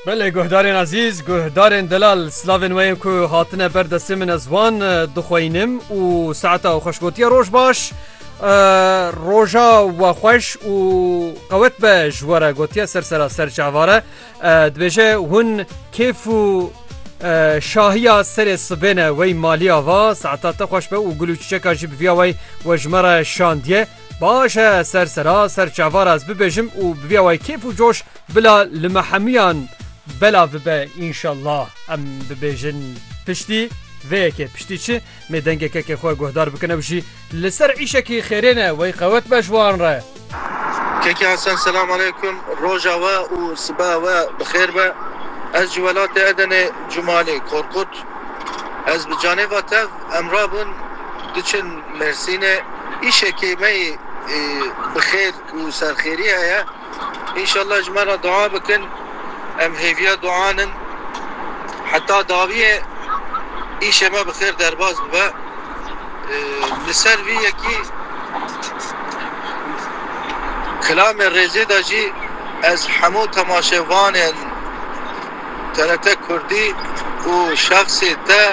Belê guhdarên ezîz, guhdarên delal silavên we yên ku hatine ber destê min ez wan dixweyinim û saeta xweş gotiye roj baş roja we xweş û qewet be ji were gotiye ser sera ser çavare dibêje hûn kêf û şahiya serê sibêne wey maliya va saeta te xweş be û gul û çiçeka jî bi viya wey we ji me re şandiye. Baş e ser sera ser çavar ez bibêjim û bi vîya wayî kêf û coş bila li me hemûyan bela bibe înşellah. Em bibêjin piştî vê yekê piştî çi mê dengeke ke xwe guhdar bikin ew jî li ser îşekî xêrê ne wey qewet be ji wan re. Keke Hasan selam aleykum roja we û sibeha we bi xêr be ez ji welatê Edenê Cumalê Korkut. Ez bi canê va tev em rabûn diçin Mêrsînê. Îşekê me yê bi xêr û serxêrî heye. Înşallah ji me re dua bikin. Em hêviya duan in. Heta dawiyê îşê me bi xêr derbas bibe. Li ser vî yekî kilamê rêzê de jî ez hemû temaşevanên. TRT Kurdî û şexsê te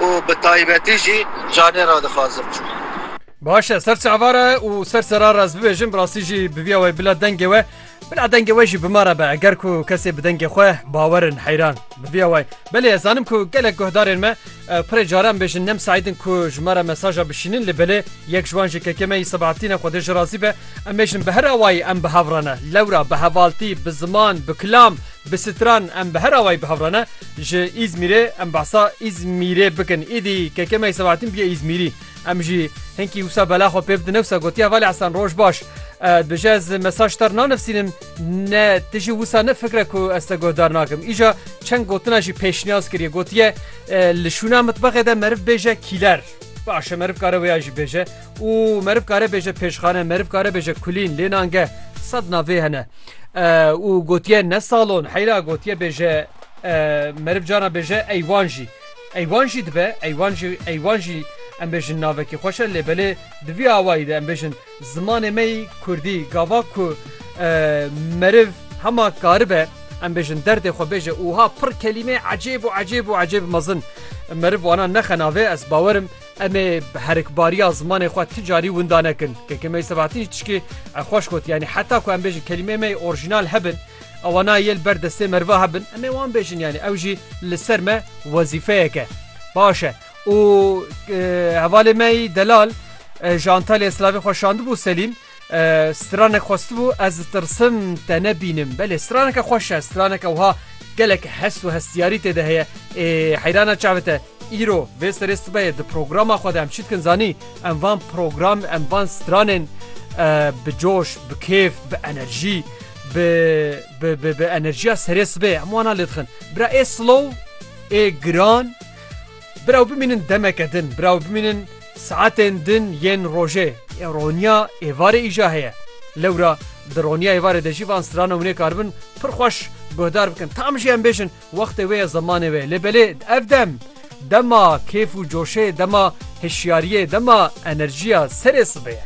û bi taybetî jî canê re dixwazim. Baş e, ser çava re û ser sera re ez bibêjim, bi rastî jî bi vîya we bila dengê we, bila dengê we jî bi ma re be, eger ku kesê bi dengê xwe bawer in heyran bi vîya we. Belê ez zanim ku gelek guhdarên me pirê caran bêjin ne misaîd in ku ji me re mesaja bişînin lê belê yek ji wan jî kekê me yî Sebahatîn e Xwedê ji razî be, em bêjin bi her awayî em bi hev re ne, lewra bi hevaltî, bi ziman, bi kilam, Bi stran em bi her awayî bi hev re ne. Ji Îzmîrê em behsa Îzmîrê bikin. Îdî Kekemeyî Sebahattin bûye Îzmîrî. Em jî hinkî wisa bela xwe pê bidin ne wisa gotiye Valî Hesen roj baş. Bi ji ez mesaj ter nanivsînim ne ti jî wisa ne fikre ku ez te guhdar nakim. Îja çend gotina jî pêşniyaz kiriye gotiye li şûna mitbexê de meriv bêje kîler. Baş e meriv kare wêya jî bêje. Û meriv kare bêje pêşxane, meriv kare bêje kulîn, lê nan ge sed navê hene. Û gotiye ne salon, heyra gotiye bêje meriv cana bêje eywan jî. Eywan jî dibe, eywan jî eywan jî em bêjin navekî xweş e lê belê di vî awayî de em bêjin zimanê me yî kurdî gava ku meriv hema karibe em bêjin derdê xwe bêje û wiha pir kelîmeyê ecêb û ecêb û ecêb mezin meriv wana nexe navê ez bawerim Em ê bi herikbariya zimanê xwe ti carî winda nekin. Kekemeyî Sebahattin jî tişkê xweş got, yanî heta ku em bêjin kelîmeyê me yê orjînal hebin, ewa nayê li ber destê meriva hebin, em ê wan bêjin yanî ew jî li ser me wezîfeyek e. Baş e. Û hevalê me yî delal ji Antalyayê silavê xwe şandibû Selîm. Stranek xwestibû ez ditirsim te nebînim. Belê straneke xweş e straneke wiha gelek hest û hestiyarî tê de heye. Ê heyrana çavi te îro vê serê sibeyê di programa xwe de em çi dikin zanî em van program em van stranên bi coş, bi kêf, bi enerjî bi bi bi bi enerjiya serê sibê em wana lê dixin. Bira ê slow ê giran Biraw bimînin demeke din, biraw bimînin saetên din yên rojê. Ê roniya êvarê îja heye. Lewra di roniya êvarê de jî van strana hûnê karibin pir xweş guhdar bikin. Tam jî em bêjin wextê wê ye zemanê wê ye. Lê belê ev dem, dema kêf û coşê, dema hişyariyê, dema enerjiya serê sibê ye.